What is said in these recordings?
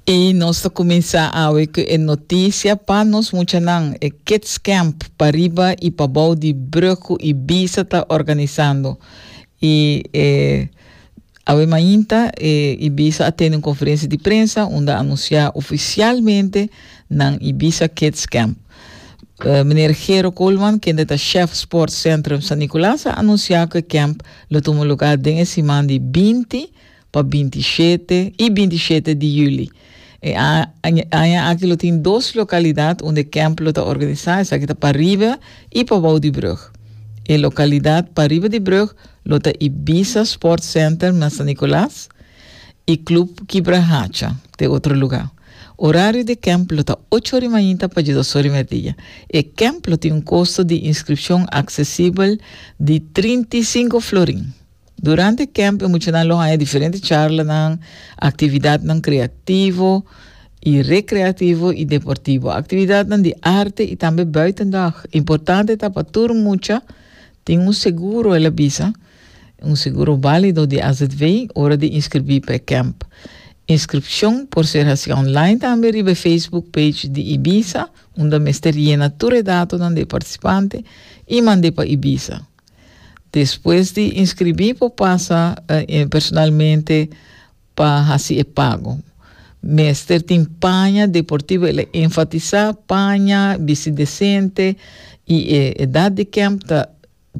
Y nos ta cuminsa awe cu e noticia pa nos muchanan, e Kids Camp pa riba y pa bou di Brugge y Bisa ta organisando. Y e awe mainta e Ibiza a tene un conferencia di prensa unda a anuncia oficialmente nan Ibiza Kids Camp. Eh, Meneer Gero Koolman, kende ta chef Sports Centrum San Nicolas, a anuncia cu e camp lo tuma lugar den e siman di binti Pa binti shete i binti shete di yuli. E aña aki lo tin dos lokalidat unda e kèmp lo ta organisá, esaki ta pariba i pabou di brug. E lokalidat pariba di brug lo ta Ibiza Sport Center na San Nicolas i Club Kibra Hacha ta e otro lugá. Orario di e kèmp lo ta ocho ori mainta pa djedos ori merdia. E kèmp lo tin un kosto di inskripshon aksesibel di trinta i sinku florin. Durante e kèmp e muchanan lo haña diferente charlanan, aktividatnan kreativo i rekreativo i deportivo, aktividatnan di arte i tambe buitendag. Importante ta pa tur mucha tin un seguro, el a bisa, un seguro válido di AZV ora di inskribí pa e kèmp. Inskripshon por ser hasiá online tambe riba e Facebook page di Ibiza, unda mester yena tur e datonan di e partisipante i mand'é pa Ibiza. Despues di inskribí por pasa personalmente pa hasi e pago. Mester tin paña deportivo, el a enfatisá paña, bisti desente i e edat di kemp ta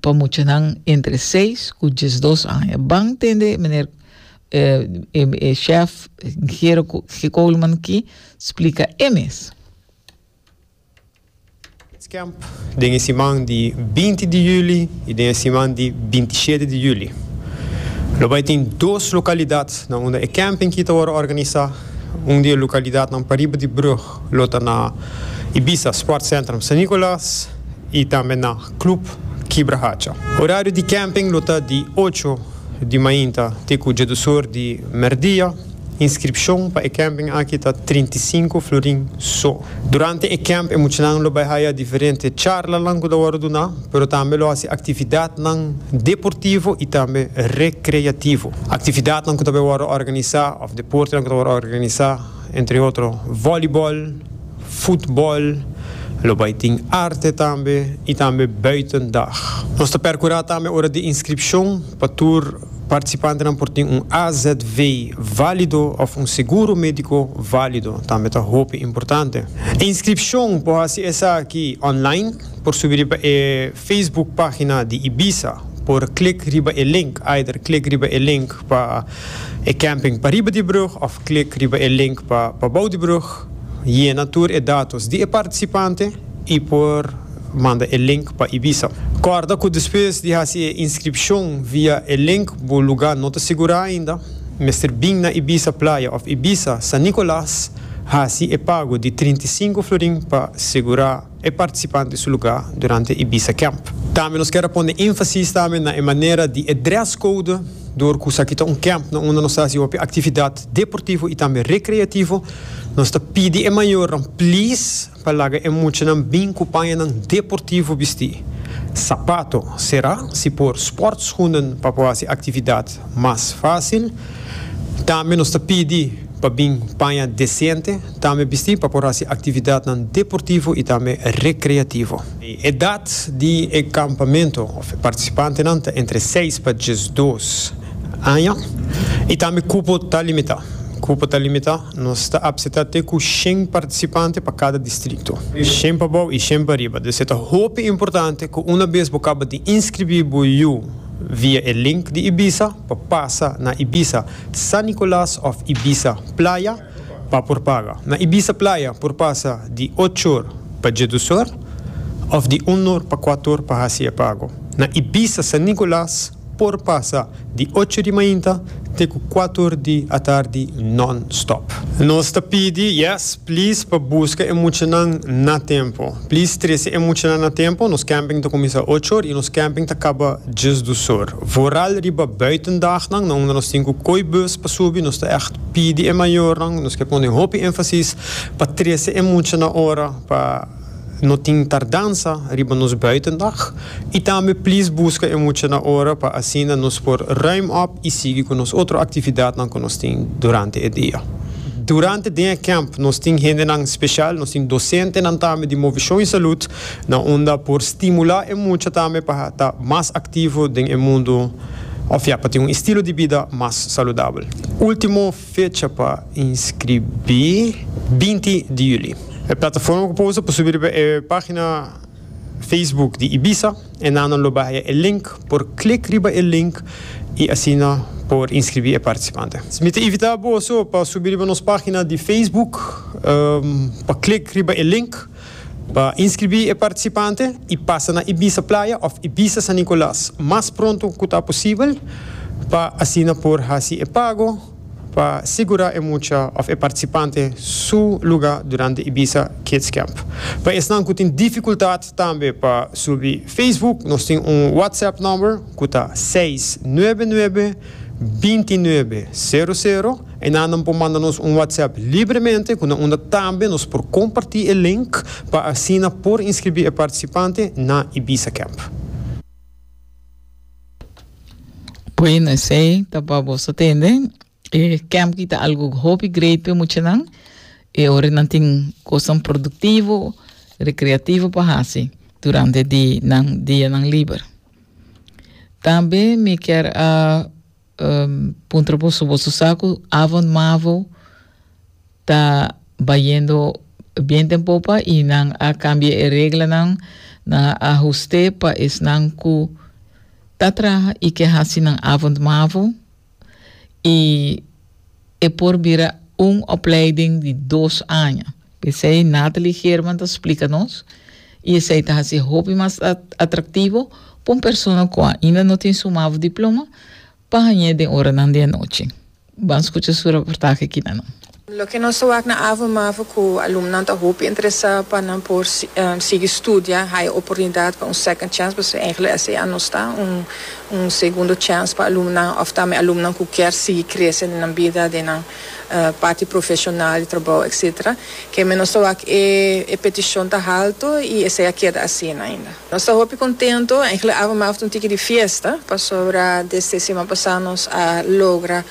pa muchanan entre seis ku diesdos aña. Ban tende meneer e chèf Gero G. Coleman ki splika e mes. Camp den e siman di binti di juli i den e siman di binti shete di juli. Lo bai tin dos lokalidadnan unda e camping ki ta wòrdu organisá. Un di e lokalidadnan pariba di brùg lo ta na Ibiza Sportcentrum San Nicolas i tambe na Club Kibra Hacha. Orario di camping lo ta di ocho di mainta te ku djadusor di mèrdia. Inskripshon pa e kèmping aki ta trinta i sinku florin so. Durante e kèmp e muchanan lo bai haya diferente charlanan ku ta wòrdu duna, pero tambe lo hasi aktividatnan deportivo i tambe rekreativo. Aktividatnan ku ta bai wòrdu organisá òf deportenan ku ta wòrdu organisá entre otro vòlibòl, futbòl, lo bai tin arte tambe i tambe bùiten dag. Nos ta perkurá tambe ora di inskripshon Pa tur participantenan por tin un AZV valido of un seguro medico valido tambe ta hopi importante. E inscripcion por haci esaki online, por subi riba e Facebook pagina di Ibiza, por click riba e link, either click riba e link pa e camping pariba di brug of click riba e link pa pabou di brug, yena tur e datos di e participante y por. Manda e link pa Ibiza. Kòrda ku despues di hasi e inskripshon via e link bo lugá no ta sigurá ainda, mester bin na Ibiza Playa òf Ibiza San Nicolas hasi e pago di trinta i sinku florin pa sigurá e partisipante su lugá durante Ibiza Camp. Tambe nos ker a pone énfasis tambe na e manera di e dress code dor ku esaki ta un camp na unda nos ta hasi hopi aktividat deportivo i tambe rekreativo. Nos ta pidi e mayornan please. Pa laga e muchanan bin ku pañanan deportivo bistí, sapato será si por sportschoenen pa por hasi actividad mas fácil. Tambe nos ta pidi pa bin paña decente tambe bistí pa por hasi actividadnan deportivo i tambe recreativo. E edad di e campamento of e participantenan ta entre seis pa diesdos aña i tambe cupo ta limitá. Cupo ta limitá. Nos ta apseta te ku shen partisipante pa kada distrikto, shen pa bou i shen pa riba. Des e ta hopi importante ku una bes bo kaba di inskribí bo yu via e link di Ibiza pa pasa na Ibiza San Nicolas òf Ibiza Playa pa por paga. Na Ibiza Playa por pasa di ochor pa djedusor òf di unor pa kuator pa hasi e pago. Na Ibiza San Nicolas. Por pasa di ocho di mainta te ku kuator di atardi non-stop. Nos ta pidi, yes, please pa buska e muchanan na tempu. Please trese e muchanan na tempu. Nos camping ta kuminsá ocho or i nos camping ta kaba djes dus or. Vooral riba buitendagnan, na unda nos tin ku koi bus pa subi, nos ta ègt pidi e mayornan, nos ke pone hopi énfasis pa trese e mucha na ora pa. No tin tardansa riba nos buitendag y tambe please busca e muchanan ora pa asina nos por ruim op y sigui cu nos otro actividadnan cu nos tin durante e dia. Durante den e camp nos tin hendenan special, nos tin docentenan tambe di Movishon y Salud na unda por stimula e mucha tambe pa ta mas activo den e mundo of ya pa tin un estilo di bida mas saludabel. Ultimo. Fecha pa inskribí, binti di juli. E plataforma ku por usa por subi riba e página Facebook di Ibiza. Enannan lo bahia e link, por klik riba e link i asina por inskribí e partisipante. Mi ta invitá boso pa subi riba nos página di Facebook pa klik riba e link. Pa inskribí e partisipante i pasa na Ibiza Playa òf Ibiza San Nicolas mas pronto ku ta posibel pa asina por hasi e pago pa sigurá e mucha òf e partisipante su lugá durante Ibiza Kids Camp. Pa esnan ku tin difikultat tambe pa subi Facebook nos tin un WhatsApp nòmber ku ta seis nuebe nuebe binti nuebe sero sero. Einan nan por manda nos un WhatsApp libremente ku nan unda tambe nos por kompartí e link pa asina por inskribí e partisipante na Ibiza Camp. Bueno, esei ta pa boso tende. E camp ki ta algu hopi great pa e muchanan. E ora nan tin kosnan produktivo, rekreativo pa hasi durante di nan dianan liber. Tambe mi kier a. puntra boso, boso sa cu Avon Mavo ta bayendo bien den popa y nan a cambia e reglanan, nan a ahuste pa esnan cu ta traha y ke haci nan Avon Mavo y. e por bira un opleiding di dos aña. P'esei Nathalie German ta splika nos, i esei ta hasi hopi mas atraktivo pa un persona ku ainda no tin su mavo diploma pa hañ'é den oranan di anochi. Ban skucha su reportahe aki na nan. Loke nos ta wak na avo mavo ku alumnonan ta hopi interesá pa nan por sigui studia, haya oportunidat pa un second chance, pasobra engelui esei a nos ta un un segundo chèns pa alumnan òf tambe alumnan ku kier sigui krese den nan bida, den nan parti profeshonal di trabou etsetera. Kèmen nos ta wak e e petishon ta haltu i esei a keda asina ainda. Nos ta hopi kontentu, èinklik ava mas ta un tiki di fiesta, pasobra desde siman pasá nos a logra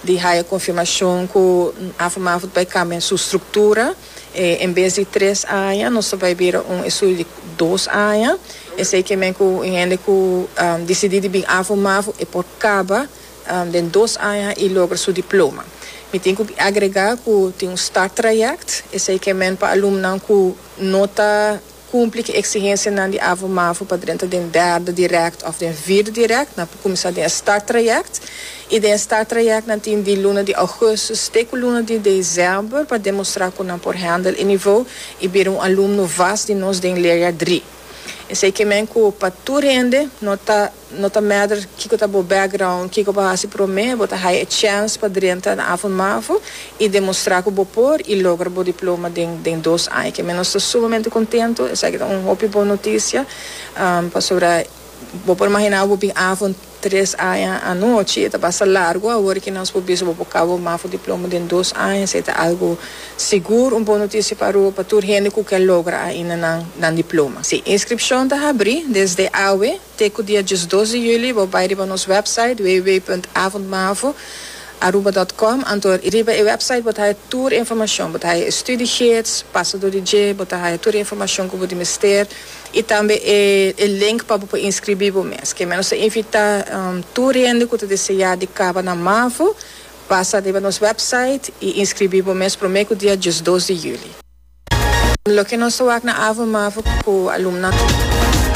di haya konfirmashon ku ava mas bai kambia su struktura. E en bes di tres aña nos ta bai bira un estudio di dos aña. Esei ke men ku un hende ku disidí di bin afo mafo e por kaba den dos aña i logra su diploma. Mi tin ku agregá ku tin un start trayèkt, esei ke men pa alumnan ku no ta. Cumpli cu exigencianan di AVO-MAVO pa drenta den derde direct of den vierde direct, nan por cuminsa den e start traject. Y den e start traject nan tin di luna di augustus te cu luna di december pa demostra cu nan por handle e niveau y bira un alumno vast di nos den leerjaar drie. Esey ke men cu pa tur hende no ta. No ta matter kiko ta bo background, kiko bo hasi prome, bo ta haya e chance pa drenta na Afo Mafo y demostra cu bo por y logra bo diploma den den dos aña. Kemi nos ta sumamente contento, esaki ta un hopi bon noticia, pasobra bo por imagina bo bin Afo tres aña anochi, e ta basta largo awor ki nos por bisa bo por cabo Mafo diploma den dos aña, esaki ta algo sigur un bon noticia pa Aruba, pa tur hende cu ke logra ainda nan nan diploma. Si, inscripcion ta habri desde awe. Te ku dia diesdos di juli bo bai riba nos wèpsait www.avondmavo aruba dòt kòm anto riba e wèpsait bo ta haya tur e informashon, bo ta haya e studiegids, pasador di dje, bo ta haya tur e informashon ku bo di mester i tambe e e link pa bo por inskribí bo mes. Ke meno ta invitá tur hende ku ta deseá di kaba na Mavo pasa riba nos wèpsait i inskribí bo mes promé ku dia diesdos di juli. Loke nos ta wak na Avondmavo ku alumnan.